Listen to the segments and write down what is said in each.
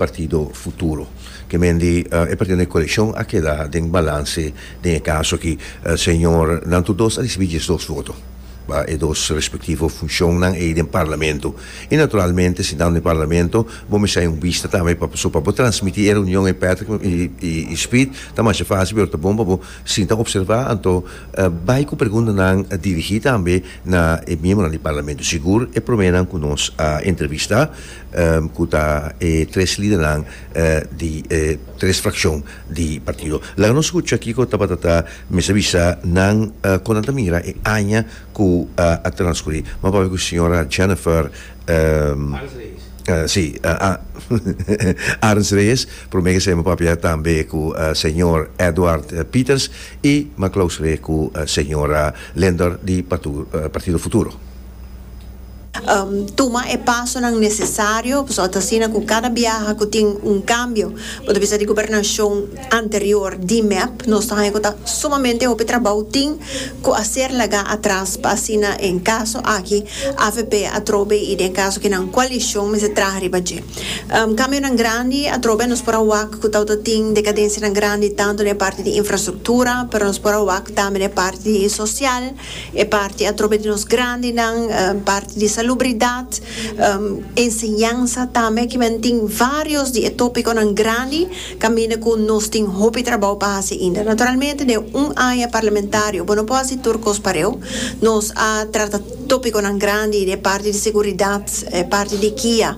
Partido Futuro. Kemen di e partido den e coalicion a keda den balance den e caso aki. Señor nan tur dos a ricibi diesdos voto pa e dos respectivo funcionnan ey den Parlamento. Y naturalmente si nan den Parlamento bo mester hay un bista tambe pa so pa bo transmiti e reunion ey Patrick y Speed ta masha facil pero ta bon pa bo sinta observa anto bay cu preguntanan dirigi tambe na e miembronan di Parlamento. Sigur e prome nan cu nos a entrevista. cu ta e tres lidernan di e tres fraccion di partido. Laga nos scucha kico tabata ta mester bisa nan con nan ta mira e aña cu a transcuri. Bo a papia cu señora Jennifer Arens Reyes, prome esei bo a papia tambe cu señor Edward Peters y bo a clausure cu señora Lindor di Partido Futuro. Tuma e pasonan nesesario, pasobra ta asina ku kada biaha ku tin un kambio, bo ta bisa di gobernashon anterior di mep, nos ta haña ku ta sumamente hopi trabou tin ku a ser laga atras pa asina den kaso aki avp atrobe i den kaso ku nan koalishon mester traha riba dje. Kambionan grandi atrobe nos por a wak ku ta ota tin dekadensianan grandi tantu den e parti di infrastruktura, pero nos por a wak tambe den e parti sosial. E parti atrobe di nos grandinan, parti di salubridat, enseñansa tambe ki men tin varios di e topiconan grandi caminda cu nos tin hopi trabao pa haci ainda. Naturalmente den un aña parlamentario bo no por haci tur cos pareu. Nos a trata topiconan grandi den e parti di seguridad, e parti di kia,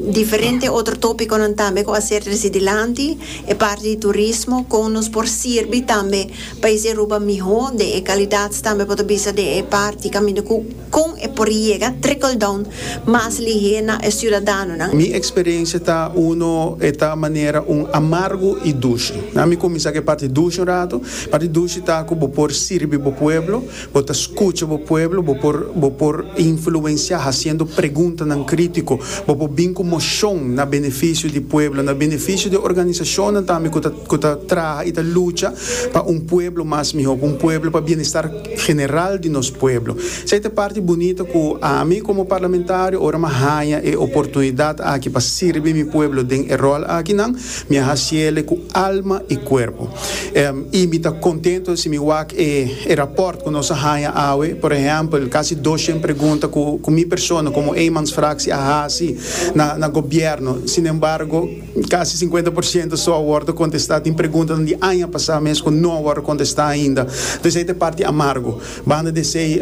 diferente otro topiconan tambe cu a ser treci dilanti, e parti di turismo con nos por sirbi tambe. Pais di Aruba mihó den e kalidats tambe bo ta bisa den e parti kaminda ku kon e por yega trickle down mas lihé na e siudadanonan. Mi eksperensia ta uno e ta manera un amargu i dushi. Mi kuminsá ku e parti dushi un ratu. Parti dushi ta ku bo por sirbi bo pueblo, Bo ta skucha bo pueblo, bo por bo por influensiá hasiendo preguntanan krítiko, bo por bin ku moshon na benefisio di pueblo, na benefisio di organisashonnan tambe ku ta ku ta traha i ta lucha pa un pueblo mas mihó, pa un pueblo pa bienestar general di nos pueblo. Esei ta e parti bunita ku ami komo parlamentario ora mi a haña e oportunidat aki pa sirbi mi pueblo den e ròl akinan, Mi a hasi ele ku alma i kuerpo. Em, i mi ta kontento si mi wak e, e rapòrt ku nos a haña awe, por ehèmpel, kasi doshen pregunta ku, ku mi persona, komo eenmansfraksie, a hasi na, na gobièrnu. Sinembargo, kasi sinkuenta por siento so a wòrdu kontestá. Tin preguntanan di aña pasá mes ku no a wòrdu kontestá ainda. Entonces ei ta e parti amargu. Banda di esei,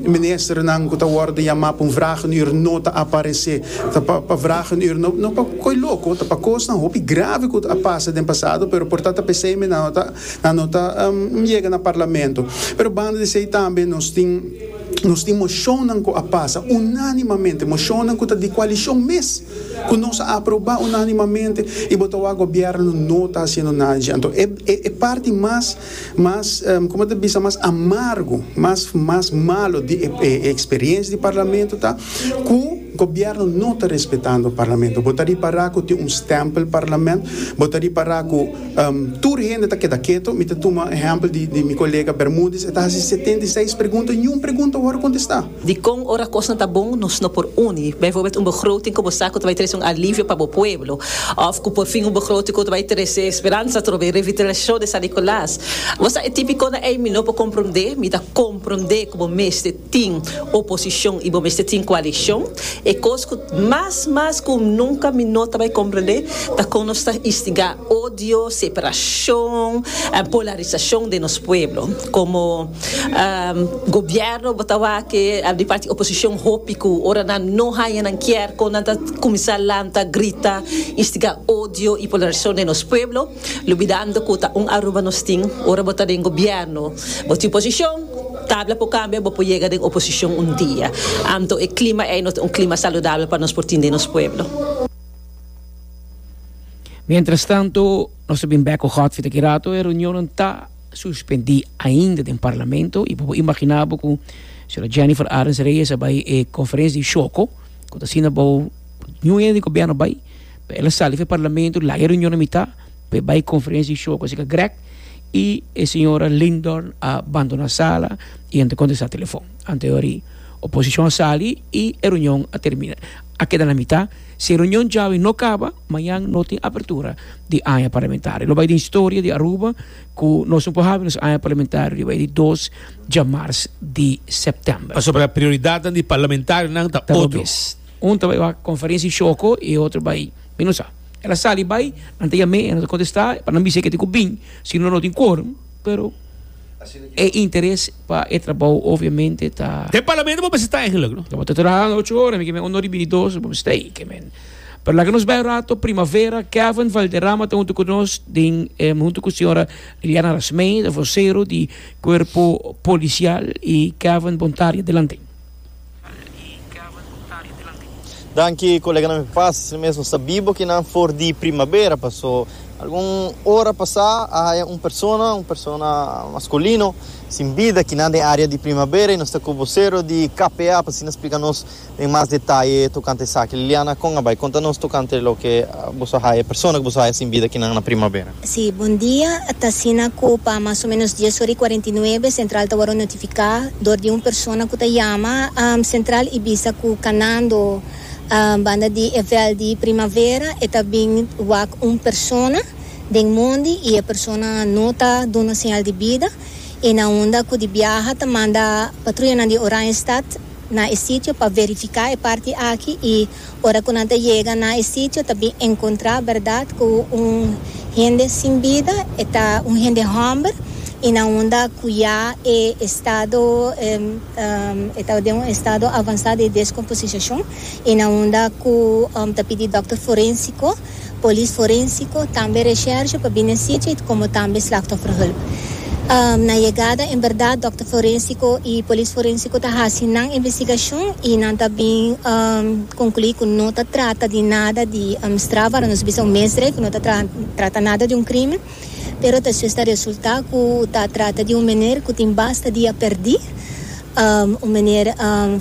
ministernan ku ta wòrdu yamá pa un vragenuur no ta aparesé. Ta pa pa vragenuur, no no pa ko'i loko, ta pa kosnan hopi grave ku a pasa den pasado, pero por ta ta p'esei mi nan no ta nan no ta yega na parlamento. Pero banda di esei tambe nos tin nos tin moshonnan ku a pasa unánimamente, moshonnan ku ta di kualishon mes, ku nos a aprobá unánimamente i bo ta wak gobièrnu no ta hasiendo nada dje. Anto e e parti mas Mas, como ta bisa, mas amargo, mas mas malo di e experiencia di Parlamento ta cu Gobierno no ta respetando Parlamento. Bo ta ripara cu tin un stempel Parlament, bo ta ripara cu tur hende ta keda keto. Mi ta tuma ehempel di mi colega Bermudez, e ta haci setenta i seis pregunta, niun pregunta wor contesta. Dikon ora kosnan ta bon nos no por uni, bijvoorbeeld un begroting ku bo sa ku ta bai trese un alivio pa bo pueblo òf ku porfin un begroting ku ta bai trese speransa atrobe, revitalisashon di San Nikolaas? Bo sa e tipikonan ei? Mi no por komprondé. Mi ta komprondé ku bo mester tin oposishon i bo mester tin koalishon. E kos ku mas mas ku nunka mi no ta bai komprondé ta kon nos ta instigá odio, separashon, polarisashon den nos pueblo. Komo. Gobierno bo ta wak-e a di parti oposicion hopi cu ora nan no haya nan kier con nan ta cuminsa lanta, grita, instiga odio y polarisacion den nos pueblo, lubidando cu ta un Aruba nos tin. Ora bo ta den Gobierno, bo tin posicion, tabla por cambia, bo por yega den oposicion un dia. Anto e clima ey no ta un clima saludabel pa nos por tin den nos pueblo. Mientrastanto, nos a bin bek cu Godfrey ta aki rato, e reunionnan ta. suspendí ainda den parlamento y bo por imaginá bo cu señora Jennifer Arens Reyes a bay e conferencia di choco cu ta asina bo ñu hende di gobierno bay pa el a sali fu e parlamento laga e reunion na mitad pa e bay conferencia di choco asina grek y e señora Lindorn a bandona sala y a no ta contesta telefon anto e ora y oposicion a sali y e reunion a termina a keda na mitad. Si e reunion djawe no kaba, mañan no tin apertura di aña parlamentario. Lo bai den historia di Aruba ku nos no por habi nos aña parlamentario riba e di dos djamars di sèptèmber. Pasobra prioridatnan di parlamentarionan ta otro. Ta bo mes. Un ta bai wak konferensia di Shoko i e otro bai mi no sa. El a sali bai, nan ta yam'é, e no ta kontestá, pa nan bis'é ke tin ku bin, sino no tin kworum, pero. E interes pa e trabou obviamente ta. Den Parlamento bo mester ta eigenlik, no? Bo ta traha ocho ora, mi ke men uno riba di dos, bo mester ei, ke men. Pero laga nos bai un rato Primavera, Kevin Valderrama ta huntu ku nos den huntu ku señora Liliana Rasmei, vocero di Cuerpo Policial, i Kevin Bontari. Adelante. Danki koleganan mi papás, mi mesmo sa biba oki nan for di primabera, paso algun ora pasá a haya un persona, un persona masculino, sin bida kinan den área di primabera y nos ta ku vocero di KPA pa asina splica nos den mas detaye tocante esaki. Liliana, con a bay conta nos tocante loke boso a haya, persona cu boso a haya sin bida kinan na primabera? Sí, bon dia. Ta asina cu pa mas o menos dies ora y cuarenta y nuebe Central ta worde notifica door di un persona cu ta yama Central y bisa cu canando banda di e veld di Primavera e ta bin wak un persona den mondi y e persona no ta duna señal di bida y na unda cu di biaha ta manda patruyanan di Oranjestad na e sitio pa verifica e parti aki y Ora ku nan ta yega na e sitio ta bin enkontrá bèrdat ku un hende sin bida, e ta un hende hòmber i na unda ku ya e estado e ta den un estado avansá di deskomposishashon i na unda ku ta pidi dòkter forénsiko. polis forénsiko, tambe resherge pa bini sitio komo tambe slachtofferhulp. Na yegada en bèrdat dòkter forénsiko i polis forénsiko ta hasi nan investigashon i nan ta bin konkluí ku no ta trata di nada di straf wara nos bisa un misdrijf, no ta trata nada di un krimen. Pero ta sues ta resultá ku ta trata di un meneer ku tin basta dia perdí, un meneer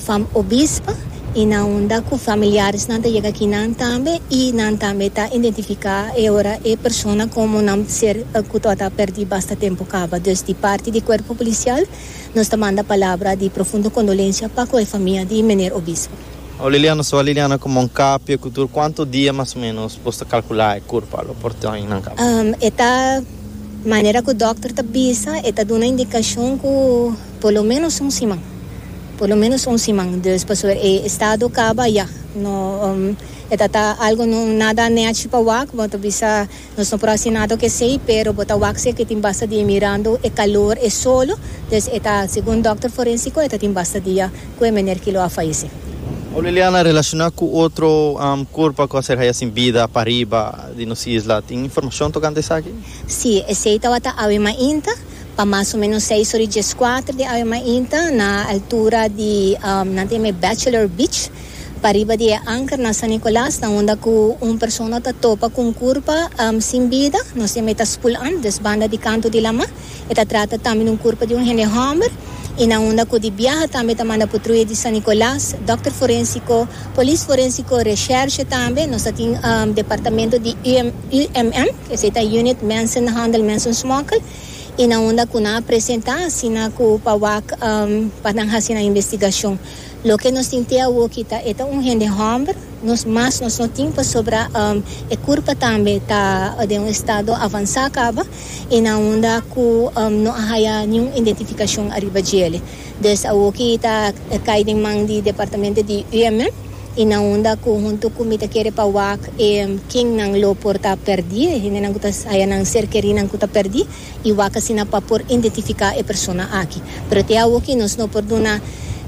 van Obisp, i nan unda ku familiaresnan ta yega kinan tambe i nan tambe ta identifiká e ora e persona komo nan ser ku tabata a perdí basta tempu kaba. Dus di parti di kuerpo polisial nos ta manda palabra di profundo kondolensia pa ku e famia di meneer Obisp. Oh Liliana so a Liliana como un kapia cu tur cuanto dia mas o menos bos ta calcula e curpa lo por tioin nan kapia? Um e ta manera cu dokter ta bisa e ta duna indicacion cu por lo menos un siman por lo menos un siman dus paso e estado caba ya no um e ta ta algo no nada nechi pa wak bo ta bisa. Nos no por hasi nada cu esey, pero bo ta wak si e tin basta dia mirando e calor, e solo, dus e ta, segun dokter forensico, e ta tin basta dia cu e mener Kilo a fayeci. Ow Liliana, relaciona cu otro curpa cu a ser haya sin bida pariba di nos isla, tin informacion tocante esaki? Si, esey tawata awe mainta, pa mas o menos seis ora y diescuater di awe mainta, na altura di, nan ta yama e Bachelor Beach. Pariba di e anker na San Nicolas nan unda ku un persona ta topa ku un kurpa sin bida, nos yama e ta spul antes banda di kantu di lama. E ta trata tambe di un kurpa di un hende hòmber i nan unda ku di biaha tambe ta manda Putruyas di San Nicolas, dòkter forensiko, polis forensiko, reshershe tambe. Nos ta tin departamento di UMM, ku esei ta Unit Mensenhandel Mensensmokkel, i nan unda ku nan a presentá asina ku pa wak pa nan hasi nan investigashon. Loke nos tin te awoki ta e ta un hende hòmber, nos mas nos no tin pasobra e kurpa tambe ta den un estado avansá kaba i na unda ku no a haya niun identifikashon ariba djele. Des awoki ta kai den man di departamento di UMM i na unda ku huntu ku mi ta kere pa wak e kennan lo por ta pèrdí, e hendenan ku ta haya nan ser kerinan ku ta pèrdí. i wak asina pa por indentifiká e persona aki. Pero te awoki nos no por duna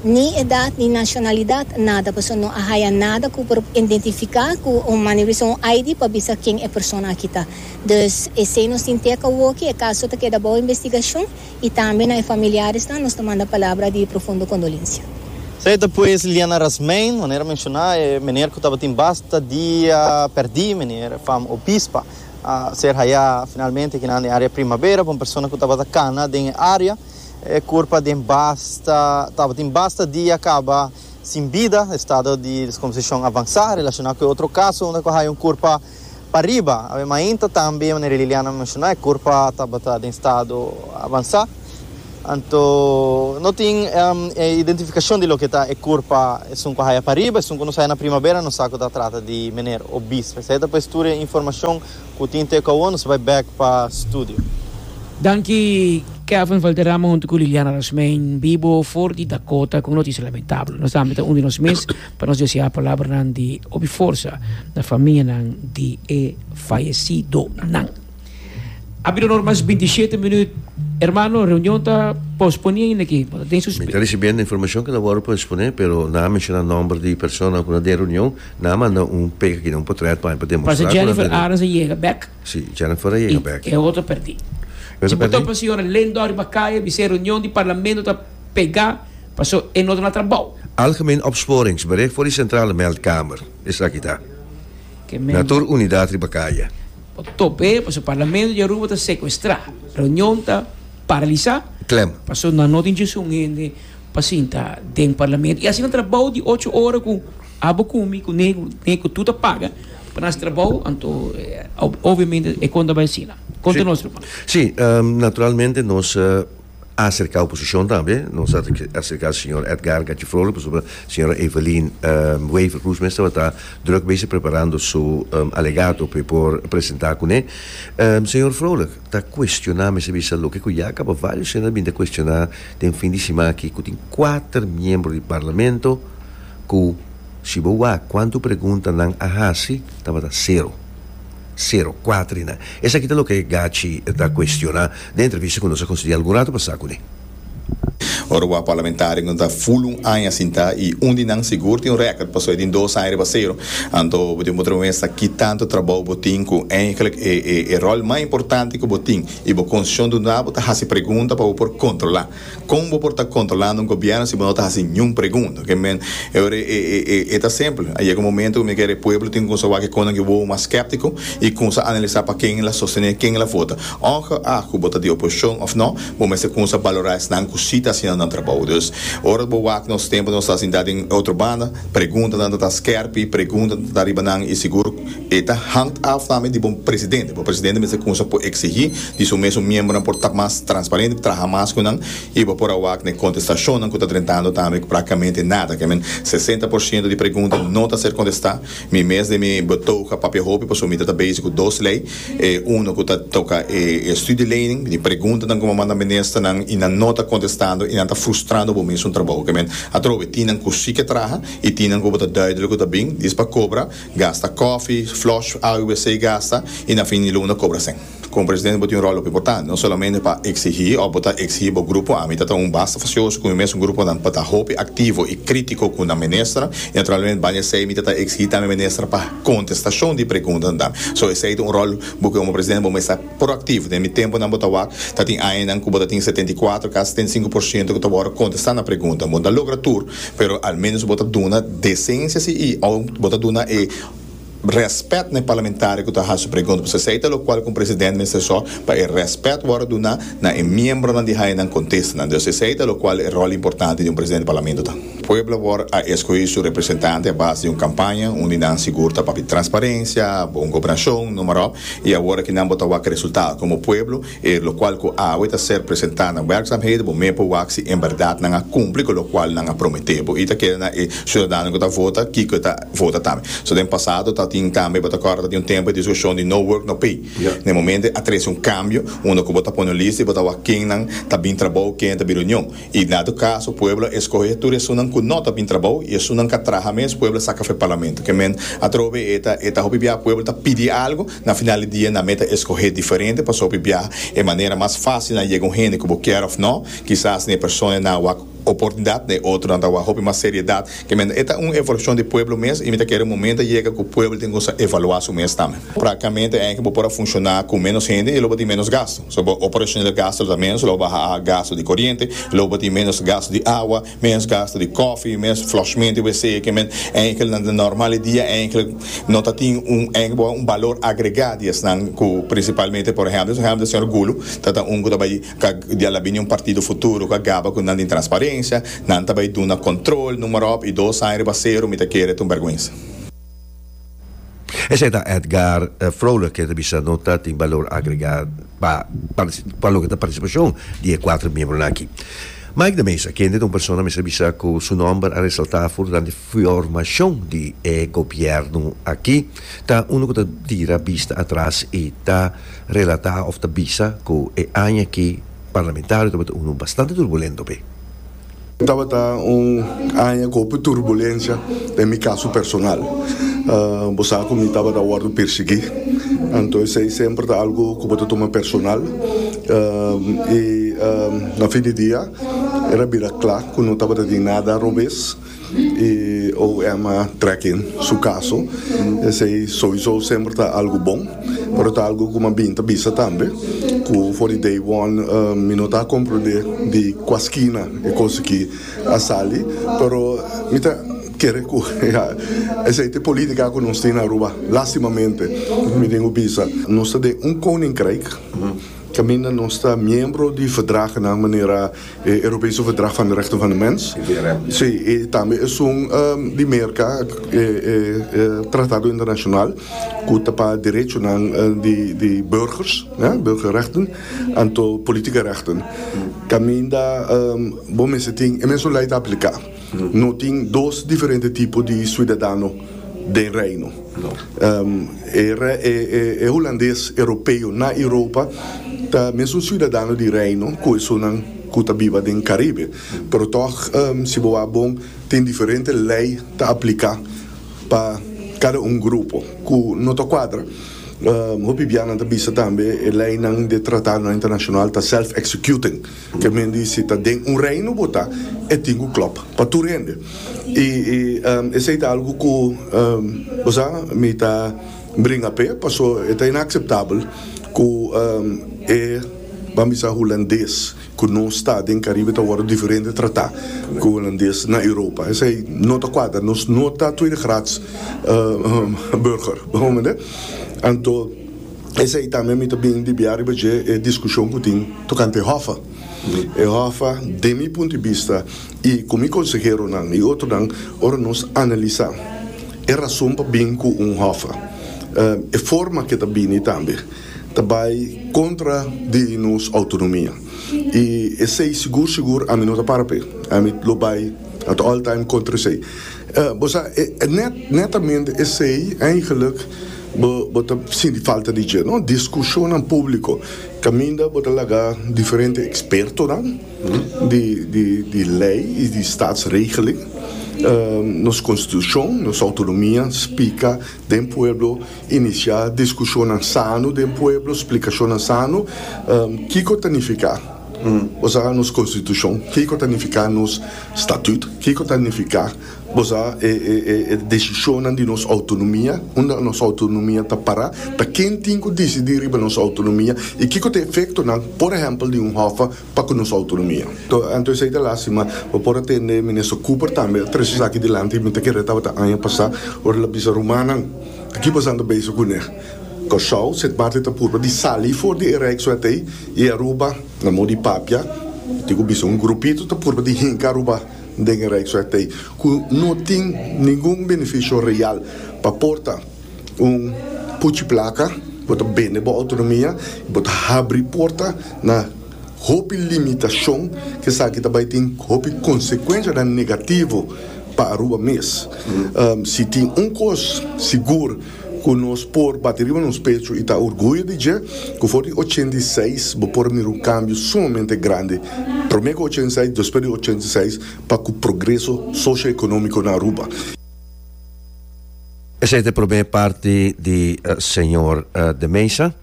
ni edat ni nashonalidat, nada, pasobra no a haya nada ku por indentifiká ku un mane wisa un ID pa bisa ken e persona aki ta. Dus esei nos tin te awoki, e kaso ta keda bou investigashon i tambe na e familiaresnan nos ta manda palabra di profundo kondolensia. Esei ta pues Liliana Rasmeyn, manera menshoná, e meneer ku tabatin basta dia pèrdí, meneer Vam Obispa. a ser hayá finalmente kinan den área Primavera pa un persona ku tabata kana den e área e kurpa den basta tabatin basta dia kaba sin bida estado di deskomposishon avansá relashoná ku e otro kaso unda ku hay un kurpa pariba a mainta tambe manera Liliana a menshoná e kurpa tabata den estado avansá. Anto no tin e identificacion di loke ta e curpa esun cu haya pariba, esun cu nos haya na primavera nos sa cu ta trata di meneer Obispo. Esey ta pues tur e informacion cu tin te cu awor nos bay back pa studio. Danki Kevin Valderrama huntu ku Liliana Rasmein Bibo for di Dakota ku un notisia lamentabel. Nos ta hamber ta un di nos mes pa nos desea palabranan di hopi forsa na famianan di e fayesidonan. A bira na ora mas binti shete minüt. Hermano, reunion ta posponé ainda aki. Bo ta tin Mi ta risibiendo informacion cu ta worde posponé, pero nan a menciona nomber di persona cu na den reunion, nan a manda un pega aki, un potret pa'i pa demostra cu nan ta den. Pasa Jennifer Arens a yega bek. Si, Jennifer a yega bek. I e otro perdi. E otro perdi? Si bo topa señora Lindor riba kaya, mi siña reunion di parlamento ta pega, paso e no ta na trabao. Algemene opsporings, bericht voor die centrale meldkamer, esaki ta. Na tur unidad riba kaya. Pa top'e paso parlamento di Aruba ta secuestrá, reunion ta paralisá, Klem. paso nan no tin djunsun hende pa sinta den parlamento. I asina trabou di ocho ora ku abo ku mi ku Neku, Neku tur ta paga pa nan trabou, anto obviamente e konta bai asina. Konta nos ruman. Sí, naturalmente nos. a aserká oposishon tambe, nos a aserká señor Edgard Gachi Frole pasobra señora Evelyn Wever Cruz mes tabata drùk bezig preparando su alegato p'e por presentá kuné. Señor Frole ta kuestioná mester bisa loke ku ya a kaba vários hende a binta kuestioná den fin di siman akí ku tin kuater miembro di Parlamento ku si bo wak kuantu preguntanan a hasi tabata sero. Sero kuater i na. Esaki ta loke Gachi ta kuestioná den entrevista ku nos a konsidi algun ratu pasá ku mi. Ora wak parlamentarionan ta ful un aña sintá i un di nan sigur tin un rèkòrt pasobra e tin dos aña riba sero, anto bo deben bo tremesta ki tantu trabou bo tin ku eindelijk e ròl mas importante ku bo tin i bo kondishon duna bo ta hasi pregunta pa bo por kontrolá. Kon bo por ta kontrolando un gobièrnu si bo no ta hasi niun pregunta? Oke men, e ora e e e e ta simpel. A yega un momento ku mi kere e pueblo tin ku kumsa wak e konan ku e wowo mas skèptiko i kumsa analisá pa ken el a sostené, ken el a vota. Ongeag ku bo ta di oposishon òf nò, bo mester kumsa balorá esnan ku si ta hasiendo nan trabou. Dus, ora bo wak nos tempu nos ta sintá den e otro banda, preguntanan ta ta skèrpi, preguntanan ta ta riba nan i sigur, E ta hangt af tambe di bo presidente. Bo presidente mester cunsha por exigi di su mesun miembernan por ta mas transparente, traha mas cu nan y bo por a wak n'e contestacionnan cu ta drentando tambe practicamente nada. Kemen sesenta por ciento di pregunta no ta ser contesta. Mi mes den mi betoog a papia hopi pasobra mi ta ta bezig cu dos ley. Uno cu ta toca e studielening, di preguntanan cu bo manda ministernan y nan no ta contestando y nan ta frustrando bo mesun trabou. Kemen atrobe tin nan cu si ke traha y tin nan cu bo ta duidelijk cu ta bin dispa cobra. Gasta kòfi, flush a u wc gasta i na fin di luna kobra sèn. Komo presidente bo tin un ròl hopi importante, no solamente pa eksigí òf bo ta eksigí bo grupo, ami ta ta un basta fasioso ku mi mes un gruponan pa ta hopi aktivo i krítiko ku nan minister i naturalmente baña esei mi ta ta eksigí tambe minister pa kontestashon di preguntanan tambe. So esei ta un ròl bo komo presidente bo mester Proactivo. Den mi temponan bo ta wak, ta tin añanan cu bo ta tin setenta i kuater, casi setenta i sinku por ciento cu ta worde contesta na pregunta. Bo no ta logra tur, pero al menos bo ta duna decencia si y o bo ta duna e respet na e parlamentario cu ta haci su pregunta. Pasobra esey ta locual cu un presidente mester so pa e respet worde duna na e miembronan di hañanan contestanan. Entonces esey ta locual e rol importante di un presidente di parlamento ta. Pueblo Word a escogi su representante a base di un campaña uni nan sigur ta papia transparencia, bon gobernacion, numerop, y awor aki nan bo ta wak e resultado como pueblo, e locual cu awe ta ser presenta na werkzaamheden, bo meen por wak si en berdad nan a cumpli cu locual nan a promete bo y ta keda na e ciudadano cu ta vota kico e ta vota tambe. So den pasado ta tin tambe, bo ta acorda ta tin un tempo e discusion di no work no pay. Na e momento a trece un cambio unda cu bo ta pone un lista y bo ta wak kennan ta bin trabou, ken ta bira union. I na tur kaso pueblo a eskohe tur esunnan ku no ta bin trabou i esunnan ka traha mes pueblo a saka fo e parlamento. Ke men atrobe e ta e ta hopi biaha pueblo ta pidi algu na final di dia nan me ta eskohe diferente pasobra hopi biaha e manera mas fásil na yega un hende ku bo kier òf no kisas na e persona nan a wak oportunidat na e otronan ta wak hopi mas seriedat Kèmen, e ta un evaluashon di pueblo mes i mi ta kere momento a yega ku pueblo tin ku sa evaluá su mes tambe. Praktikamente ANKE bo por a funshoná ku ménos hende i lo bo tin ménos gastu. So bo operationel gastu lo ta ménos, lo bo baha a gastu di koriente, lo bo tin ménos gastu di awa, ménos gastu di kòfi, ménos flòshmento i wc. Kèmen, ANKE na e nòrmal di dia ANKE no ta tin un ANKE bo un balor agregá di esnan ku prinsipalmente por ehèmpel, ehèmpel di señor Gulu ta ta un ku ta bai Ca di al a bini un partido futuro cu a gaba cu nan di transparencia, nan ta bay duna control, numerop, y dos aña riba cero mi ta kere ta un berguensa. Esey ta Edgar Vrolijk ke ta bisa no ta tin balor agrega pa pa loke ta participacion di e cuatro miembronan aki. Mike de Meza, kende ta un persona mester bisa cu su nomber a resalta for durante formacion di e gobierno aki, Ta unu ku ta tira bista atras i ta relatá òf ta bisa ku e aña aki parlamentario tabata unu bastante turbulento p'e. Tabata un aña ku hopi turbulensia den mi kaso personal. Bo sa ku mi tabata wòrdu pirsiguí, anto esei semper ta algu ku bo ta tuma personal. I na fin di dia era bira kla ku no tabata tin nada robes. y OM a tracking su caso esey sowiso semper ta algo bon pero ta algo cu mabien ta bisa tambe cu for di day one mi no ta a comprende di cua skina e cos aki a sali pero mi ta kere cu ya esey ta e politica cu nos tin na Aruba lastimamente mi tin cu bisa nos ta den un koninkrijk caminda nos ta miembro di verdragen nan manera E Europese Verdrag van de Rechten van de Mens, si, i tambe esun di Merka e tratado internashonal ku ta pa derechonan di burgers, burgerrechten, anto politieke rechten kaminda bo mester tin e mesun lei ta apliká. No tin dos diferente tipo di suidadano den Reino. E Hulandes Europeo na Europa ta mesun suidadano di Reino ku esunnan ku ta biba den Karibe. Pero tòg, si bo a bon, tin diferente lei ta apliká pa kada un grupo ku no ta kuadra. Hopi bianan ta bisa tambe e leinan di tratadnan internashonal ta self-executing. Te mindi si ta den un reino bo ta, e tin ku klòp pa tur hende. I esei ta algu ku bo sa mi ta bringa p'e, paso e ta inakseptabel ku e, ban bisa hulandes ku no sta den Karibe ta wòrdu diferente tratá ku hulandes na Europa. Esei no ta kuadra, nos no ta tweede graads burger, bo mende? Anto. Esei tambe mi ta bini di bia riba dje e diskushon ku tin tokante hòffa. E hòffa, den mi punto di bista i ku mi konseheronan i otronan, ora nos analisá e rason pa bin ku un hòffa, e forma ke ta bini tambe ta bai kontra di nos outonomia. I esei sigur sigur ami no ta para p'e. Ami lo bai at all time kontra esei. Bo sa, netamente esei, eigenlijk, bo ta sinti falta di dje, no? Discusionnan publico, caminda bo ta laga diferente expertonan di ley y di statsregeling, nos constitucion, nos autonomia, spica den pueblo, inicia discusionnan sano den pueblo, splicacionnan sano, kico ta nifica, bo sa, nos constitucion, kico ta nifica nos. Statut, Kiko ta nifiká bo sa e desishonnan di nos outonomia? Unda nos outonomia ta pará? Ta ken tin ku disidí riba nos outonomia? I kiko ta e efektonan, por ehèmpel, di un hòf pa ku nos outonomia? Anto esei ta lástima, bo por a tende Minister Cooper tambe a trese esaki dilanti. Mi ta kere tabata aña pasá ora el a bisa rumannan, Di ki bosan ta beso kuné? Kòrsou, Sint Maarten ta purba di sali for di e Rijkswet ei i Aruba, Na mos di papia, tin ku bisa un grupito ta purba di hinka Aruba den e Rijksweg tei ku no tin ningun benefisio real pa porta un puchi plaka, bo ta bende bo outonomia i bo ta habri porta na hopi limitashon ku esaki ta bai tin hopi konsekuenshanan negativo pa Aruba mes. Si tin un kos sigur. Ku nos por bati riba nos pechu i ta orguyo di dje ku for di ochenta i seis bo por mira un kambio sumamente grandi, promé ku ochenta i seis, despues di ochenta i seis pa ku progreso socio-ekonómiko na Aruba. Esei ta e promé parti di señor De Mesa.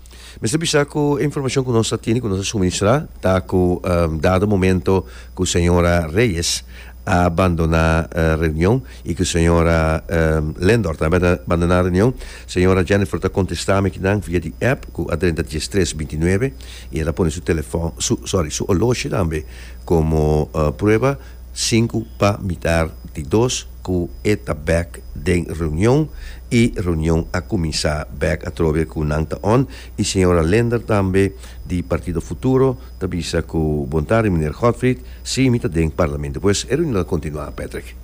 Mester bisa cu e informacion cu nos ta tene, cu nos a suministra, ta cu dado momento cu señora Reyes a bandona reunion y cu señora Lendor tambe a bandona reunion, señora Jennifer ta contesta mi nan via di app cu a drenta dies tres binti nuebe y a ta pone su telefon, su, sorry, su horloge tambe como prueba. Sinku pa mitar di dos ku e ta bèk den reunion i reunion a kuminsá bèk atrobe ku nan ta on i señora Linder tambe di Partido Futuro ta bisa ku Bon tarde Meneer Godfried, si mi ta den parlamento pues e reunion a kontinuá Patrick.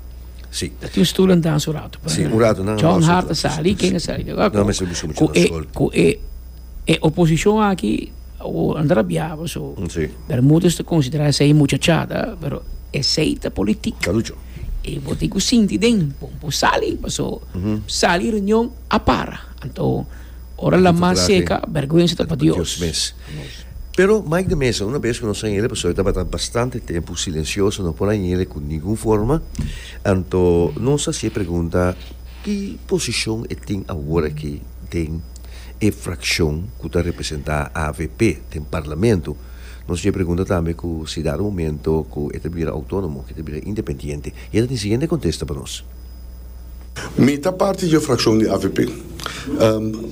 Si. Ta tin stulan dans un ratu pa si un ratu nan a John Hart a sali ken a sali ku e ku e oposishon aki. Awo a drabiaba so Bermudez ta considera esey muchachada pero esey ta politic Carucho y bo tin cu sinti den bo bo sali paso sali reunion a para anto ora la mas seca berguenza ta pa Dios mes. Pero Mike de Meza una bes cu nos a yende paso e tabata bastante tempo silencioso no por a yende cu ningun forma anto nos a hacié pregunta ki posicion e tin awor aki den e frakshon ku ta representá avp den parlamento. Nos tin e pregunta tambe ku si dado momento ku e ta bira outónomo ke ta bira independiente i e ta tin siguiente kontesta pa nos. Mi ta parti di e frakshon di avp.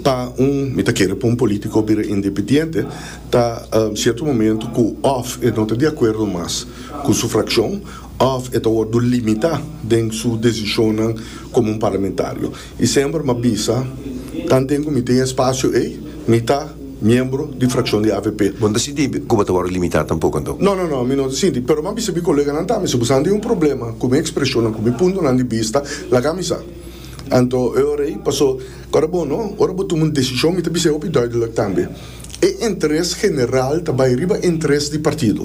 Pa un mi ta kere pa un polítiko bira independiente ta sierto momento ku òf e no ta di akuerdo mas ku su frakshon òf e ta wòrdu limitá den su desishonnan komo un parlamentario. I semper m'a bisa, Tanten ku mi tin e espasio ei, mi ta miembro di frakshon di avp. Bo no ta sinti ku bo ta wòrdu limitá tampoko anto? No, no, no, mi no ta sinti. Pero m'a bisa mi koleganan tambe, si bo sa tin un problema ku mi ekspreshonnan, ku mi puntonan di bista, laga mi sa. Anto e ora ei, paso ora bo no, ora bo tuma un desishon, mi ta bisa e hopi dùidelik tambe. E interes general ta bai riba interes di partido.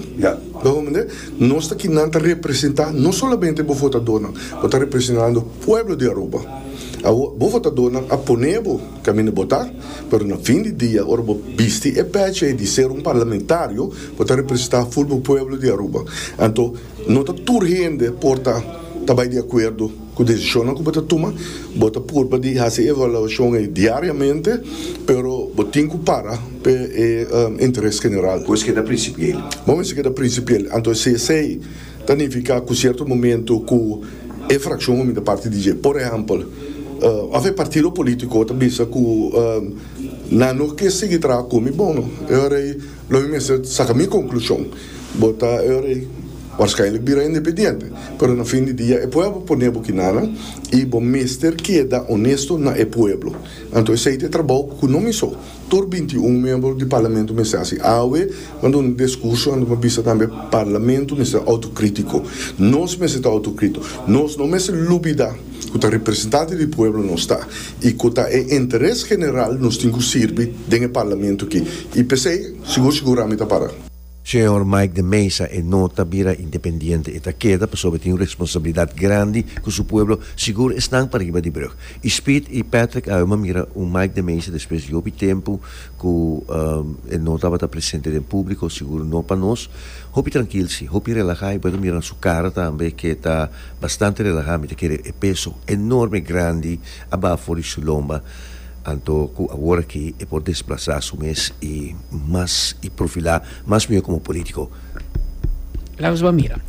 Lo hopi mende nos ta ki nan ta representa no solamente bo votadornan, bo ta representando pueblo di Aruba. Awo bo votadornan a pone bo kaminda bo ta, pero na fin di dia ora bo bisti e pechi ei di ser un parlamentario bo ta representa full bo pueblo di Aruba. Anto no ta tur hende por ta ta bai di acuerdo. Ku desishonnan ku bo ta tuma, bo ta purba di hasi e evaluashon ei diariamente, pero bo tin ku para p'e e interes general. Bo mester keda prinsipiel. Bo mester keda prinsipiel. Anto si esei ta nifiká ku sierto momentu ku e frakshon hominda parti di dje. Por ehèmpel, òf e partido polítiko ta bisa ku nan no ke sigui traha ku mi, bon, e hora ei. Lo mi mester saka mi konklushon, bo ta e ora ei waarskijnlijk bira independiente, pero na fin di dia e pueblo pone bo kinanan i bo mester keda onesto na e pueblo. Anto esei ta e trabou ku no mi so, tur binti un miembro di parlamento mester hasi. Awe bo duna un diskurso anto bo bisa tambe parlamento mester outokritiko. Nos mester ta outokritiko. Nos no mester lubida ku ta representante di pueblo nos ta. y cu ta e interes general nos tin cu sirbi den e Parlamento aki y pesey sigur sigura mi ta para. Señor Mike de Meza e no ta bira independiente e ta keda pasobra e tin un responsabilidad grandi cu su pueblo sigur esnan pariba di brug y Speed y Patrick awe m'a mira un Mike de Meza despues di hopi tempo ku e no tabata presente den públiko, sigur no pa nos. Hopi trankil si, hopi relahá, i bo ta mira na su kara tambe ke ta bastante relahá, mi ta kere e peso enorme, grandi aba for di su lomba, anto ku aworakí e por desplasá su mes i mas i profilá mas mihó komo polítiko. Lawes bo a mira.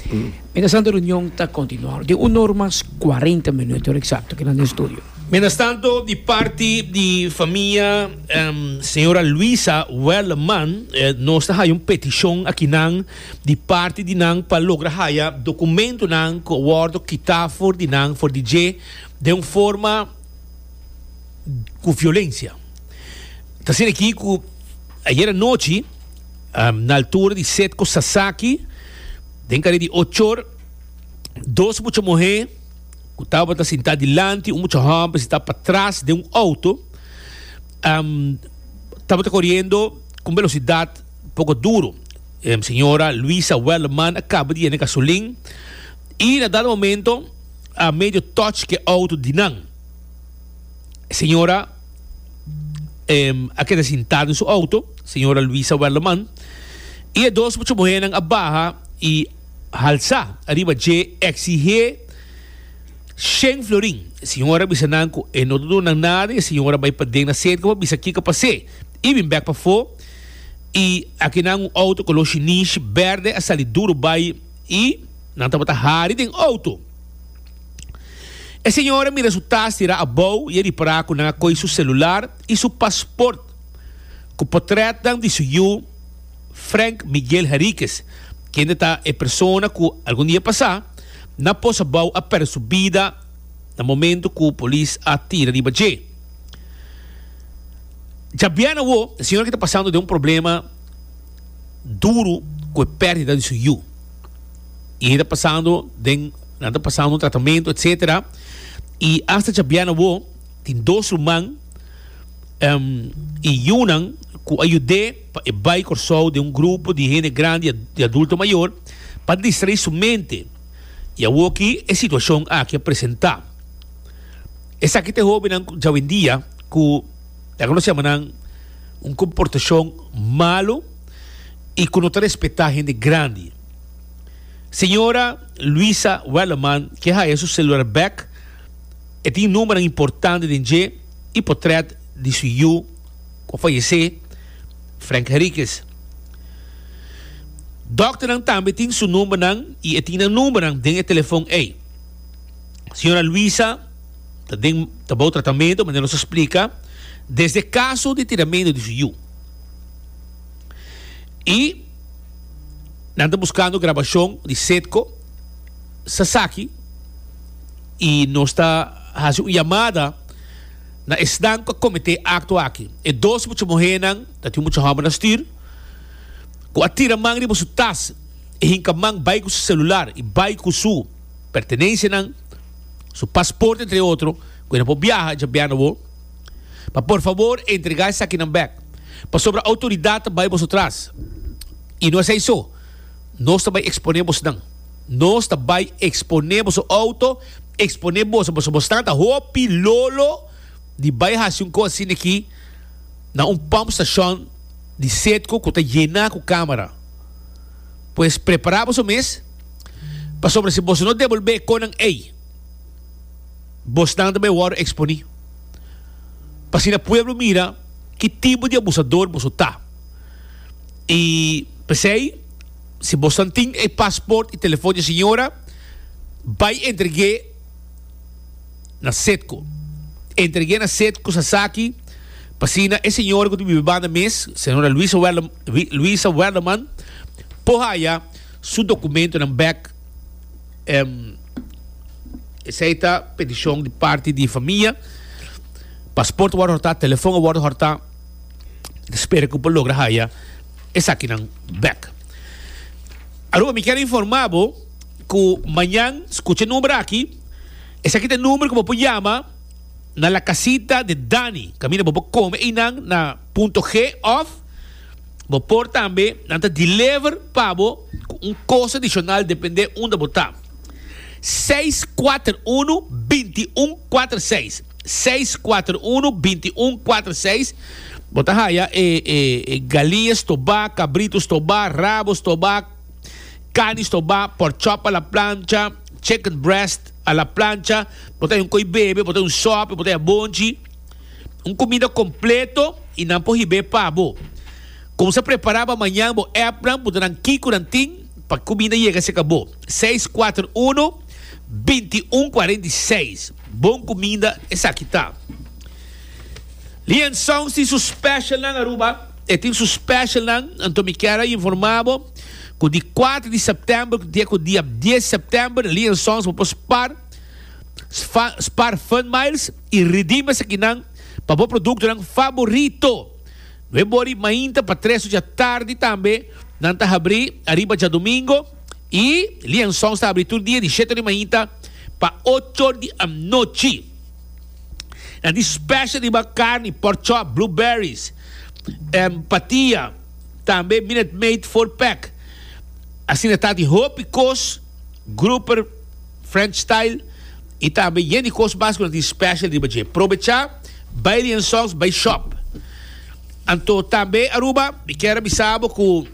Mientras tanto reunion ta kontinuá den un or mas kuarenta minuto eksakto, kinan den estudio. Mientras tanto di parti di famia. Señora Luisa Werleman, nos ta haya un peticion akinan di parti di nan pa logra haya documentonan cu a wordo kita for di nan, for di dje, den un forma cu violencia. Ta siña aki cu ayer anochi na altura di Setco Sasaki, den carrer di Ochor, dos mucha muher, ku tabata sintá dilanti un mucha hòmber sintá patras den un outo tabata koriendo ku un belosidat poko duru. E señora Luisa Welleman a kaba di yena e gasolin i na dado momento a medio tòch ku e outo di nan. E señora a keda sintá den su outo, señora Luisa Welleman, i e dos mucha muhénan a baha i, halsa ariba dje exihé shen florin. E siñora bisa nan ku e no ta duna nan nada. E siñora bai paden na serka pa bisa kiko pas'é i bin bèk pafó. I akinan un outo koló shinish bèrdè a sali duru bai i nan tabata hari den outo. E siñora mira su tas tirá abou i a ripará ku nan a koi su selular i su pasport ku potrètnan di su yu. Frank Miguel Henriquez, kende ta e persona ku algun dia pasá na Posabou a pèrdè su bida na momentu ku polis a tira riba dje. Djabièn awó e señora ke ta pasando den un problema duru ku e pèrdida di su yu i e ta pasando den nan ta pasando un tratamentu etsetera i asta djabièn awó tin dos ruman i yunan ku a yud'é. pa e bai Kòrsou den un grupo di hende grandi di adulto mayor pa distraí su mente i awor ki e situashon aki a presentá. Esaki ta e hóbennan djawendia ku ta konosé a manan un komportashon malu i ku no ta respetá hende grandi. Señora Luisa Wellerman ke haya su selular bèk, e tin númeronan importante den dje i potrèt di su yu, cu a fayece, Frank Henriquez. Dokternan tambe tin su numbernan y e tin nan numbernan den e telefon ey. Señora Luisa ta den ta bou tratamento, manera nos a splica, desde caso di tiramento di su yu. Y nan ta buscando grabacion di Cedco sasaki y nos ta haci un yamada. Na esnan cu a cometé acto aki, e dos mucha muhénan, ta tin un mucha hombernan stuur, cu a tira man riba su tas y hinca man bay cu su celular y bay cu su pertenencianan, su paspoort entre otro, cu e no por biaha, e dja bia na bo, pa por favor entrega esakinan bek, pasobra autoridad ta bay boso tras y no esey so. Nos ta bai exponé bosnan. Nos ta bai exponé boso auto, exponé boso. Pasobra bosnan ta hopi lolo di bai haci un cos asina aki na un pump station di Sedco cu ta yena cu camera. Pues prepara boso mes, pasobra si boso no devolbe e conan ey, bosnan ta bai wordo exponi. P'asina pueblo mira ki tipo di abusador boso ta. I p'esei, si bosnan tin e pasport i telefon di e siñora, bai entreg'é na Cedco. Entreg'é na Cedco sa esaki p'asina e siñora ku ta biba banda mes, señora Luisa Werleman, Luisa Werleman, por haya su dokumentonan bèk. Em, Esei ta petishon di parti di e famia. Pasport a wòrdu hòrtá, telefon a wòrdu hòrtá. Spera cu por logra haya esakinan bek. Aruba mi kier informa bo cu mañan scucha e number aki. Esaki ta e number cu bo por yama na La Casita de Dani. Caminda bo por come einan na Punto G of bo por tambe nan ta deliver pa bo cu un costo adicional depende unda bo ta. 641-2146. seis kuater unu binti un kuater seis bo ta haya e e e galinha stobá kabrito stobá rabo stobá kani stobá pork chop a la plancha chicken breast a la plancha bo ta haya un koi bebe bo ta haya un sòp bo ta haya bonchi un kumida kompleto i nan por hib'é pa bo kon sa prepará bo mañan bo ep nan puntra nan kiko nan tin pa kumida yega seka bo seis kuater unu binti un kuarenta i seis. Bon kuminda esaki ta. Lian Sounds tin su specialnan Aruba, e tin su specialnan, anto mi kier a informa bo ku di kuater di sèptèmber ku te ku dia dies sèptèmber Lian Sounds bo por spar spar funmiles i redeem esakinan pa bo produktonan faborito. No e bori mainta pa tres ocha tardi tambe nan ta habri ariba djadomingo. I lienzons ta abri tur dia di sheto di mainta pa ochor di anochi. Na di special riba carni, pork chop, blueberries, em, patia, tambe Minute Maid four pack. Asina ta di hopi kos, grouper, French style i tambe yen di kos mas ku na di special riba dje. Probecha bai lienzons, bai shop. Anto tambe Aruba, mi kier a bisa bo ku.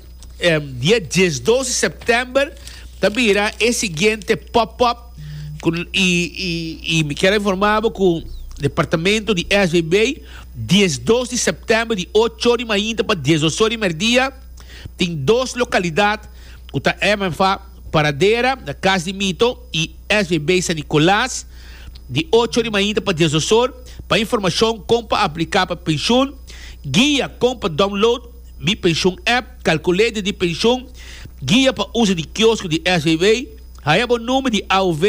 Dia dies doce september ta bira e siguiente pop up cu y mi kier a informa bo cu departamento di SBB dies doce september di ocho or di mainta pa dies dos or di merdia tin dos localidad cu ta MFA Paradera na Cas di Mito y SBB San Nicolas di ocho or di mainta pa dies dos or pa informacion con pa aplica pa pensioen guia con pa download Mi Pensioen app, Calculator di Pensioen, Guia pa uso di Kiosko di SAV, Haya bo number di AOV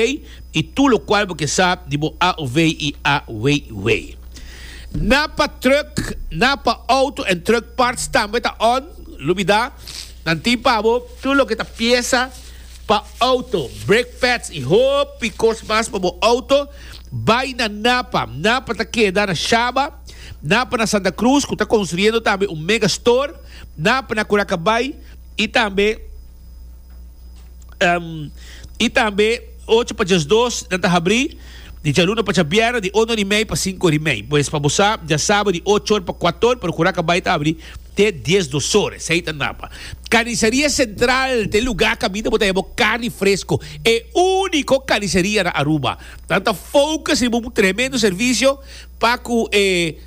y tur locual bo ke sa di bo AOV y AWW. Na pa truck, na pa auto en truck parts tambe ta on, lubida, nan tin pa bo tur loke ta piesa pa auto, brake pads y hopi cos mas pa bo auto, bay na Napa, Napa ta keda na Shaba, Na pana Santa Cruz cu ta construyendo tambe un mega store, na pana Curacabay y tambe y tambe ocho pa diasdos nan ta habri di djaluna pa djabierna di uno di mei pa cinco di mei. Pues pa bo sa diasaba di ochor pa cuator pero Curacabay ta habri te dies dosor esey ta napa. Carniceria Central ta e lugar caminda bo ta heba carni fresco, e unico carniceria na Aruba. Nan ta focus riba un tremendo servicio. Pa cu e,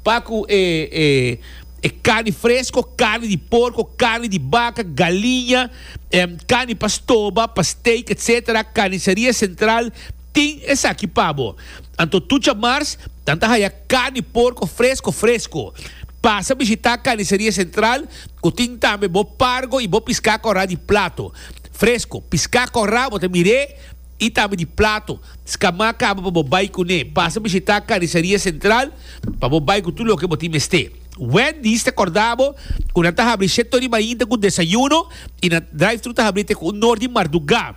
pa cu e, e, e carni fresco, carni di porco, carni di baca, galiña, em, carni pa stoba, pa steak, etc. Carniceria Central tin esaki pa bo. Anto tucha mars, nan ta haya carni porco fresco, fresco. Pasa bishita Carniceria Central, cu tin tambe bo pargo y bo pisca corra di plato. Fresco, pisca corra, bo ta mir'e, y tambe di plato. Scamá caba pa bo bay cuné. Pasa bishitá Carniceria Central pa bo bay cu tur loke bo tin mester. Wendy's ta corda bo cu nan ta habri siete ora di mainta cu desayuno y nan drive-thru ta habri te cu un or di marduga.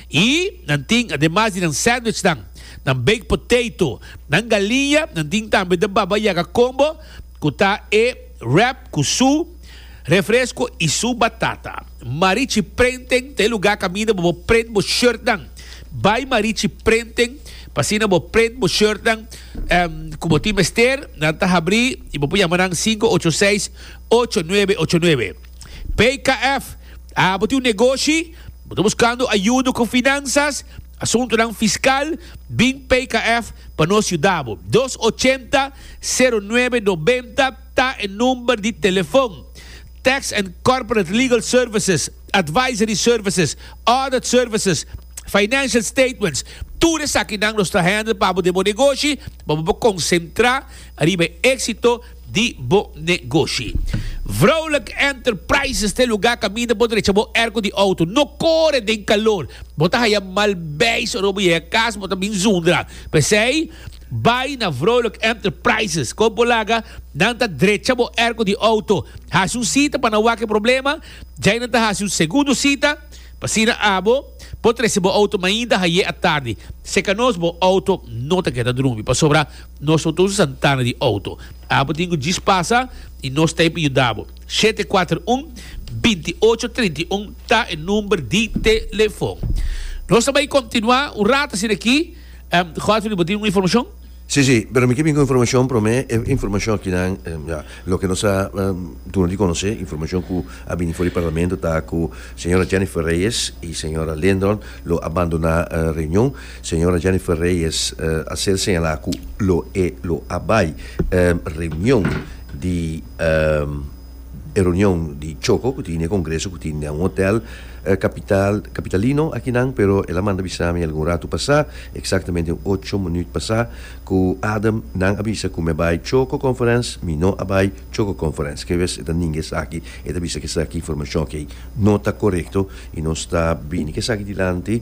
Y nan tin, ademas di nan sandwichnan, nan baked potato, nan galiña, nan tin tambe The Baba Yaga Combo, ku ta e wrap ku su refresco y su batata. Marichi prenten ta e lugar kaminda bo por prent bo shirtnan. Bay Marichi prenten pa asina bo prent bo shirtnan ku bo tin mester. Nan ta habri y bo por yama nan sinku ocho seis ocho nuebe ocho nuebe. PKF, Abo tin un negoshi? Bo ta buskando ayudo ku finansas? Asuntunan Fiskal bin PKF pa nos yuda bo. Dos ochenta, sero nuebe nobenta ta e number di telefon. Tax and Corporate Legal Services, Advisory Services, Audit Services, Financial Statements, tur esakinan nos ta handle pa bo den bo negoshi pa bo por konsentra riba e éksito di bo negoshi. Vrolijk Enterprises ta e lugá kaminda bo drecha bo airco di auto. No kore den kalor. Bo ta haya mal beis ora bo yega kas, bo ta bin zundra. P'esei, bai na Vrolijk Enterprises. Kon por laga? Nan ta drecha bo airco di auto. Hasi un sita pa nan wak e problema. Djai nan ta hasi un segundo sita. P'asina abo por trese bo auto mainda haye atardi. Seka nos, bo auto no ta keda drumi. Pasobra Nos lo tun santana di outo. Abo tin ku djis pasa i nos ta ebe yuda bo. Shete kuater un, binti ocho trinta i un ta e number di telefon. Nos ta bai kontinuá un rato asina aki. Godfrey bo tin un informashon? Sí, sí, pero mi ke bin ku informashon promé. E informashon akinan, ya, loke nos a duna di konosé, informashon ku a bini for di parlamento ta ku señora Jennifer Reyes i señora Lindron lo abandoná reunion. Señora Jennifer Reyes a ser señalá ku lo e lo a bai e reunion di e reunion di Choco ku tin e kongreso ku tin den un hotel kapital kapitalino akinan pero el a manda bisa mi algun ratu pasá eksaktamente un ocho minüt pasá ku Adam nan a bisa ku mi a bai Choco Conference mi no a bai Choco Conference ke bes e ta ninga esaki e ta bisa ku esaki informashon akí no ta korekto i nos ta bini ku esaki dilanti.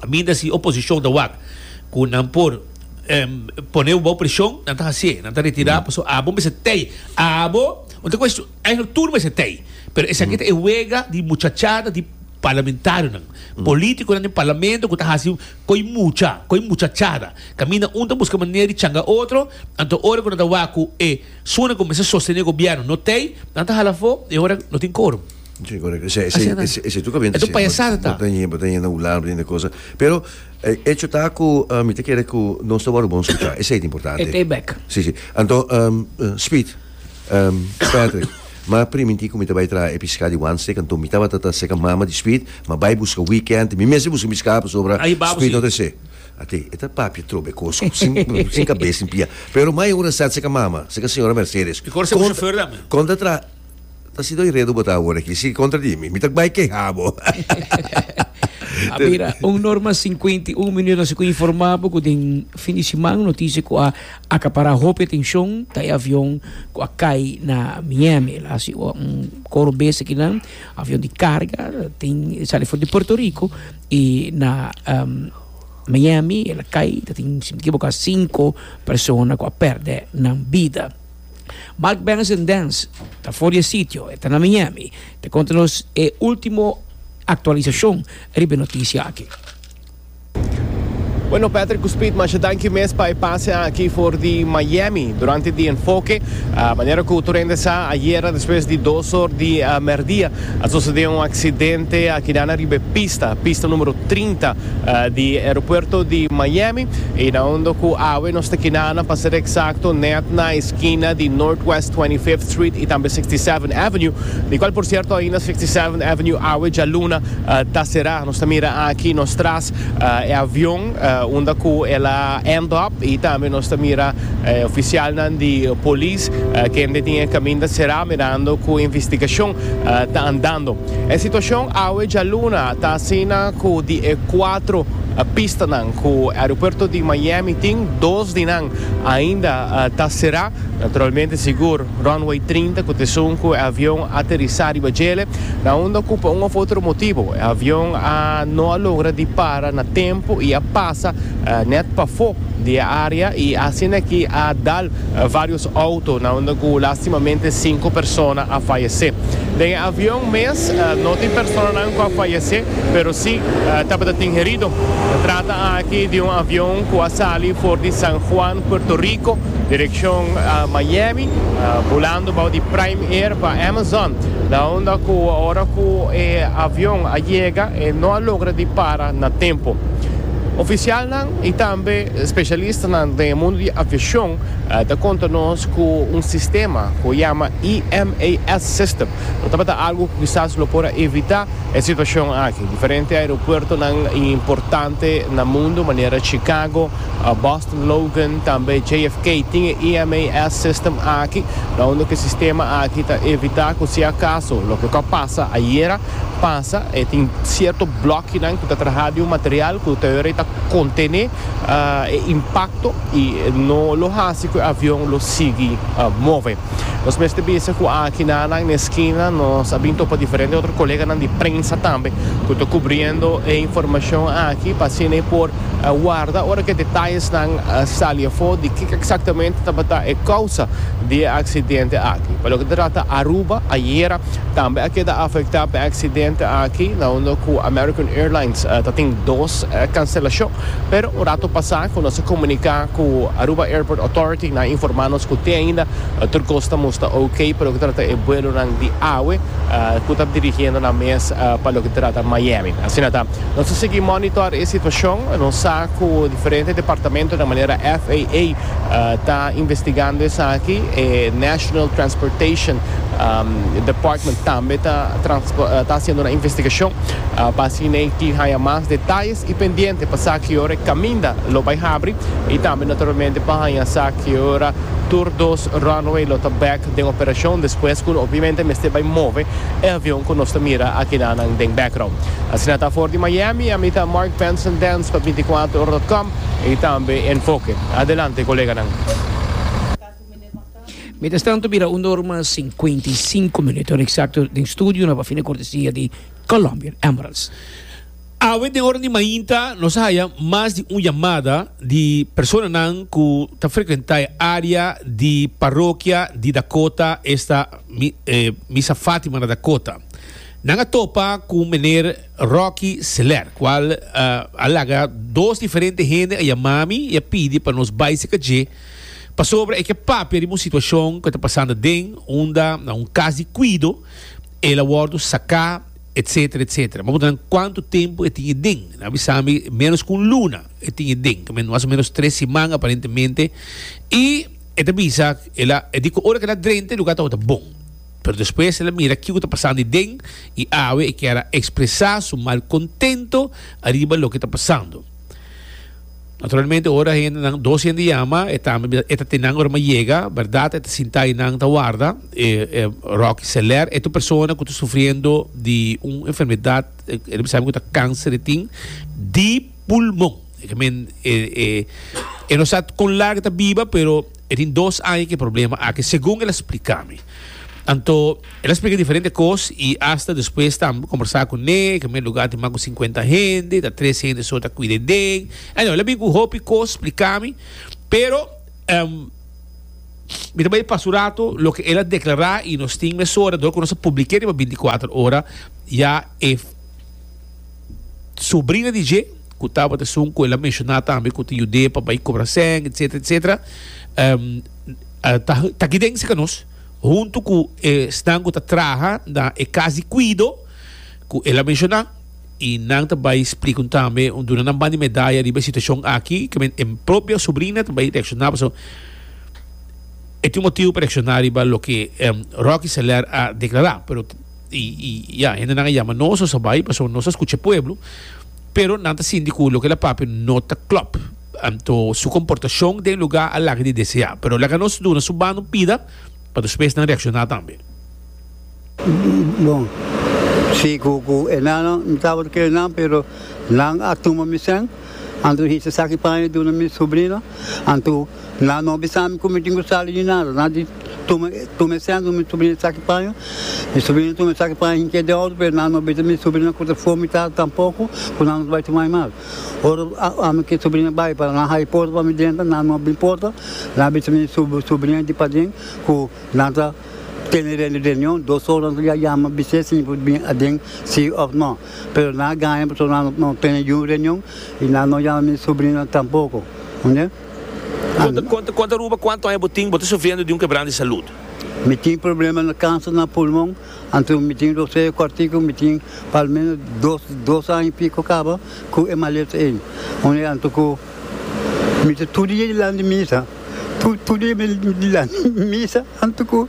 A minda si oposicion ta wak cu nan por pone bo bou presion, nan ta haci'e, nan ta retira pasobra abo mester tey. Abo, no ta cuestion, eigenlop tur mester tey. Pero esaki ta e wega di muchachada di parlamentarionan, politiconan den parlamento cu ta haci coy mucha, coy muchachada. Caminda un ta busca manera di changa otro, anto ora cu nan ta wak cu e sunan cu mester sostene gobierno no tey, nan ta hala afo y e ora no tin quorum. Si correcto esei tu caminda esei bo ta yendo bo ta yendo na un lado bo ta yendo na cosa pero e hecho ta cu mi ta kere cu nos ta wor bon scucha esei ta importante e tei bek si si anto speed Patrick ma priminti cu mi ta bay traha e pisca di one stick anto mi tabata ta seca mama di speed ma bay busca weekend mi mes a busca mi pisca pasobra speed no ta esei a tei e ta papia trobe e cos cu sin sin cabeza sin pia pero ma e ora sa seca mama seca señora Mercedes con ta traha Ta si doi redu bo ta awor aki. Si kontra di mi, mi ta bai keha bo. A mira un norma sinkuenta i un minut. Ansi ku informá bo ku den fin di siman un notisia ku a akapará hopi atenshon ta e avion ku a kai na Miami. El a hasi un koro bes akinan. Avion di karga tin sali for di Puerto Rico i na Miami el a kai. Ta tin, si mi no kiboká, sinku persona ku a pèrdè nan bida. Mark Benson Dance ta for di e sitio, e ta na Miami, ta konta nos e ultimo aktualisashon riba e notisia aki. Bueno Patrick ku Speed masha danki mes pa e pase aki for di Miami durante di Enfoke. Manera ku tur hende sa ayera despues di dos or di merdia A sosodé un aksidente akidanan riba e pista, pista numero trinta, di e aeropuerto di Miami, i na hondo ku awe nos ta kinanan, pa ser eksakto nèt na eskina di Northwest Twenty Fifth Street i tambe Sixty Seventh Avenue, di kual por sierto ainda Sixty Seventh Avenue awe djaluna ta será. Nos ta mira aki nos tras. e avion unda cu el a end up y tambe nos ta mira e oficialnan di polis kende tin e caminda cera mirando cu investigacion ta andando. E situacion awe djaluna ta asina cu di e cuatro pistanan cu aeropuerto di Miami tin, dos di nan ainda ta cera, naturalmente sigur. Runway trinta ku t'esun ku e avion a aterisá riba djele, na unda ku pa un òf otro motibu e avion a no a logra di para na tempu i a pasa nèt pafó di e área i asin'akí a dal vários outo na unda ku lastimamente sinku persona a fayesé. Den e avion mes no tin personanan ku a fayesé pero si tabata tin herido. Ta trata aki di un avion ku a sali for di San Juan, Puerto Rico Direccion Miami, bulando bao di Prime Air pa Amazon, na unda cu ora cu e avion a yega e no a logra di para na tempo. Oficialnan y tambe specialistanan den e mundo di aviacion ta conta nos cu un sistema cu a yama EMAS system lo tabata algo cu kisas lo por a evita e situacion aki. Diferente aeropuertonan importante na mundo manera Chicago, Boston Logan tambe JFK tin e EMAS system aki na unda ku e sistema aki ta evitá ku si akaso loke ku a pasa ayera pasa e tin sierto blòkienan ku ta trahá di un material ku ta yora i ta kontené e impakto i no lo hasi ku e avion lo sigui move. Nos mester bisa ku aki na nan na e skina nos a bin topa diferente otro koleganan di prensa tambe ku ta kubriendo e informashon aki pa asina e por A warda ora ku e detayesnan a sali afó di kiko eksaktamente tabata e kousa di e aksidente aki. Pa loke ta trata Aruba, ayera tambe a keda afektá pa e aksidente aki na unda ku American Airlines ta tin dos kanselashon. Pero un rato pasá ku nos a komuniká ku Aruba Airport Authority nan a informá nos ku te ainda tur kos ta mustra OK pa loke ta trata e buelonan di awe ku ta dirigiendo nan mes pa loke ta trata Miami. Asina ta. Nos a sigui monitor e situacion. Nos sa cu diferente departamento na manera FAA ta investigando esaki. E National Transportation Department tambe ta haciendo nan investigacion pa asina e tin haya mas detalles. Y pendiente pa sa ki ora e caminda lo bay habri y tambe naturalmente pa haya sa ki ora tur dos runway lo ta bek. den operashon despues ku no obiamente mester bai move e avion ku nos ta mira akidanan den background. Asina ta for di Miami, ami ta Mark Benson Dance pa binticuatro ora dot com y tambe Enfoque. Adelante coleganan. Mientras tanto bira un orma cincuenta y cinco minuto, ora exacto den studio na pa fin di cortesia di Colombian Emeralds. Awe den ora di mainta nos a haya mas di un yamada di personanan ku ta frekuentá e área di parokia di Dakota, esta Misa Fátima na Dakota. Nan a topa ku meneer Rocky Seler, kual a laga dos diferente hende a yamá mi i a pidi pa nos bai seka dje pasobra e ke papia riba un situashon ku a ta pasando den unda na un kas di kuido el a wòrdu saká etcetera etcetera bo ta nan cuanto tempo e tin e den nan a bisa mi menos cu un luna e tin e den que mas o menos tres siman aparentemente y e ta bisa el a e dico ora que el a drenta e lugar tabata bon pero despues el a mira kico ta pasando ahí den y awe e kier a expresa su malcontento ariba loke ta pasando. Naturalmente ora hendenan dos hende yama e tambe e ta tin nan ora mi yega berdad e ta sinta y nan ta warda e e Rocky Seler e tu persona ku ta sufriendo di un enfermedad e mi sabi ku ta kanser e tin di pulmon e ke men e e e no sa kon larg e ta biba pero e tin dos aña ku e problema aki segun el a splika mi anto El a splica diferente cos y hasta despues ta combersa cu ne. E primer lugar tin mas cu cincuenta hende, ta tres hende so ta cuida den. Anyhow, el a bini cu hopi cos splica mi, pero mi ta bay e paso rato loke el a declara y nos tin mesora door cu nos a publica riba binticuater ora ya e sobrina di dje cu tabata esun cu el a menciona tambe cu ta yude pa bay cobra seng, etcetera, etcetera, ta aki den cerca nos. huntu ku esnan ku ta traha na e kas di kuido ku el a menshoná i nan ta bai splika un tambe un duna nan banda di medaya riba e situashon aki ku men e propio subrina ta bai reakshoná pasobra e tin un motibu pa reakshoná riba loke Rocky Soler a deklará pero i ya hendenan a yama nos nos a bai pasobra nos ta skucha e pueblo. Pero nan ta sinti cu loke el a papia no ta clop. Anto su comportacion den lugar a laga di desea. Pero laga nos duna su banda un pida pa despues nan reacciona tambe. Bon, si cu cu enano mi tabata kere nan pero nan a tuma mi sen, anto mi hica esaki paña duna mi sobrino, anto nan no bisa mi cu mi tin cu sali di nada. Tuma tuma e sènta mi subrina esaki paño mi subrina tuma esaki paño hinka e deodo pero nan no bisa mi subrina ku ta for mi tata tampoko ku nan no ta bai tuma e mal ora ami ku e subrina bai para nan haya porta pa mi drenta nan no bin porta nan a bisa mi subrina di paden ku nan ta tene reunion dos ora nan ta yama bis'e si por bin aden si òf nò pero nan a gaña pasobra nan no tene yu reunion i nan no yama mi subrina tampoko. Con ta Aruba? Cuanto aña bo tin? Bo ta sufriendo di un quebrando di salud? Mi tin problema na cancer na pulmon. Anto mi tin rosea cortico. Mi tin pa al menos dos dos aña y pico caba cu e maleta ey. Unda anto cu mi ta tur dia dilanti misa, tur tur dia dilanti misa anto cu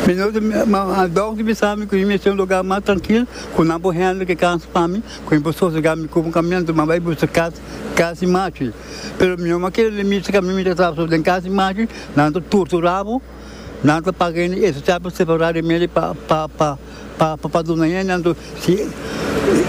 mi no ta ma doctor bisami cu mi mester un lugar mas trankil cu nan por handle ki cancer pa mi cu mi por sosega mi cup un camion anto cu mi a bai busca cas. Casi machi, pero mi mama kere le misa ka mi mi ta traba so den casi machi nan ta turtu rabo nan ta paga hende ese chapa separado e medio pa pa pa pa pa duna hende anto si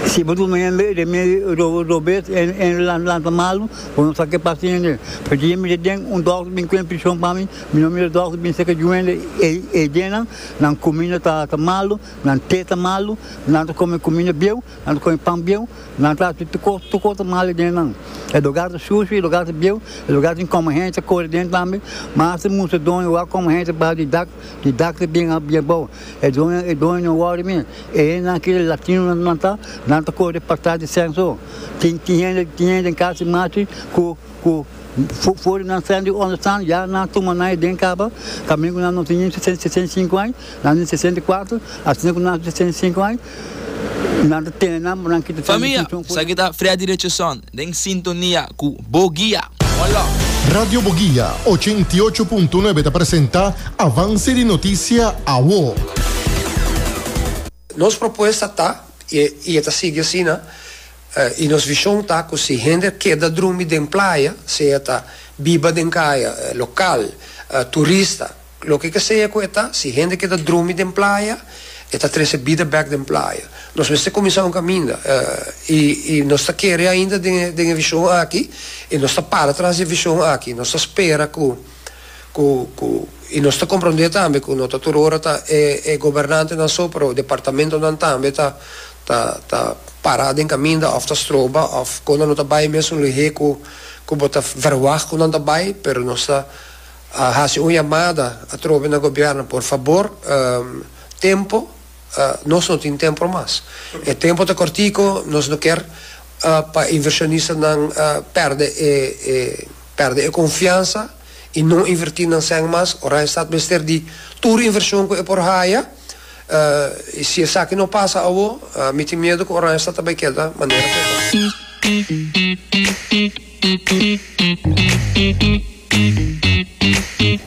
si bo duna hende e remedio ro robes hende hende la la ta malo bo no sa ke pasa hende e dia mi ta den un dokter bin kuen prishon pa mi mi no mira dokter bin seka yu hende e e dia nan nan kuminda ta ta malo nan te ta malo nan ta kome kuminda bieu Nan ta kome pan bieu, nan ta hasi tur kos mal den di nan. E lugar ta sucio, e lugar ta bieu, e lugar tin kome hende ta kore den tambe. Mas ta mustra doño wak kome hende ta baha di dak, di dak ta bin abou. E doño, e doño no wori mi, e hendenan aki e latino nan ta, nan ta kore di pasar di censo. Tin, tin hende, tin hende den casa di Machi ku. Ku for di nan sèn di ònde stan ya nan tuma nan e den kaba, tambe ku nan no tin sesenta i sinku aña, nan tin sesenta i kuatru, asina ku nan tin sesenta i sinku aña, nan ta tene nan pa nan kita cion di funshon ku. Esaki ta Freddy Richardson den sintonia cu Bo Guia. One love. Radio Boguia ochenta i ocho punto nuebe ta presenta Avance di Noticia Awo. Nos propuesta ta, y e ta sigui asina. I nos vishon ta ku si hende keda drumi den playa, sea ta biba den kaya, lokal, turista, loke ke sea ku e ta, si hende keda drumi den playa, e ta trese bida bèk den playa. Nos mester kuminsá un kaminda, i i nos ta kere ainda den e vishon aki, i nos ta para tras di e vishon aki. Nos ta spera ku. ku ku i nos ta komprondé tambe ku no ta tur ora ta e e gobernantenan so pero departamentonan tambe ta ta ta pará den kaminda òf ta stroba òf kon nan no ta bai mesun lihé ku ku bo ta vèrwagt ku nan ta bai pero nos ta hasi un yamada atrobe na gobièrnu por fabor tempo nos no tin tempro mas e tempo ta kòrtiko nos no ker pa invershonistanan pèrdè e e. Perde e konfiansa i no invertí nan sèn mas. Ora e stat mester di tur invershon ku e por haya. I si esaki no pasa awor, mi tin miedu ku Oranje Stat ta bai keda manera ku e ta.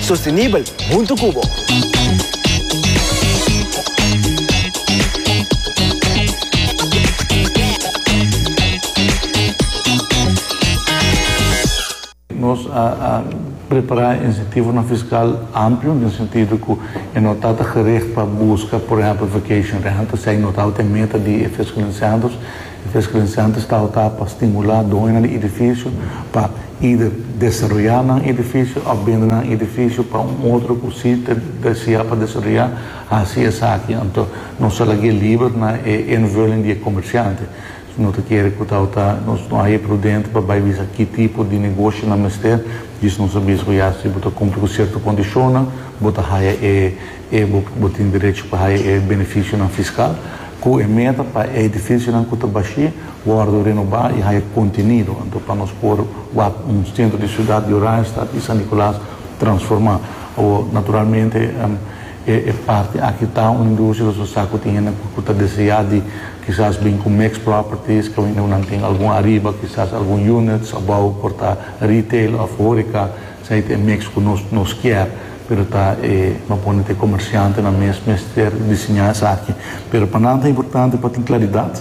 Sostenibel huntu cu bo. Nos a prepara e incentivonan fiscal amplio den sentido cu e no ta ta gericht pa busca, por ehempel, vacation rentals, esaki no tabata e meta di e fiscaliseandos. E Fiscalin Center sta autá pa stimulá doñonan di edifisio pa eider desaroyá nan edifisio òf bende nan edifisio pa un otro ku sí ta desea pa desaroyá hasi esaki. Anto nos a lagu'é liber na e invulling di e komersiante. No ta kere ku ta autá nos no haña prudente pa bai bisa ki tipo di negoshi nan mester. Djis nos a bisa ku ya si bo ta kumpli ku sierto kondishonnan bo ta haña e. E bo bo tin derecho pa haya e beneficionan fiscal cu e meta pa e edificionan cu ta bashí wordo renobá y haya contenido, anto pa nos por wak un centro di ciudad di Oranjestad y San Nicolas transformá. Awo, naturalmente, e parti aki ta un industria, nos ta sa cu tin hende cu ta deseá di kisas bin cu mixed properties, cu nan tin algun ariba, kisas algun units, abao por ta retail of horeca, Esei ta e mix cu nos nos kier, pero ta e bo pone ta e comerciantenan mes mester disiña esaki. Pero pa nan ta importante pa tin claridad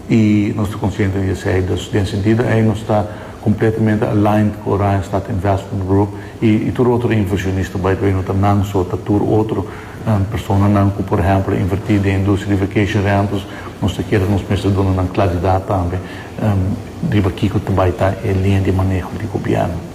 y nos ta consciente di esei. Dus den e sentido ei nos ta completamente aligned cu Orion Stad Investment Group y y tur otro inversionista. By the way no ta nan so, ta tur otro personanan cu por ehemplo inverti den e industria di vacation rentals. Nos ta kere nos mester duna nan claridad tambe riba kico ta bay ta e linea di maneho di gobierno.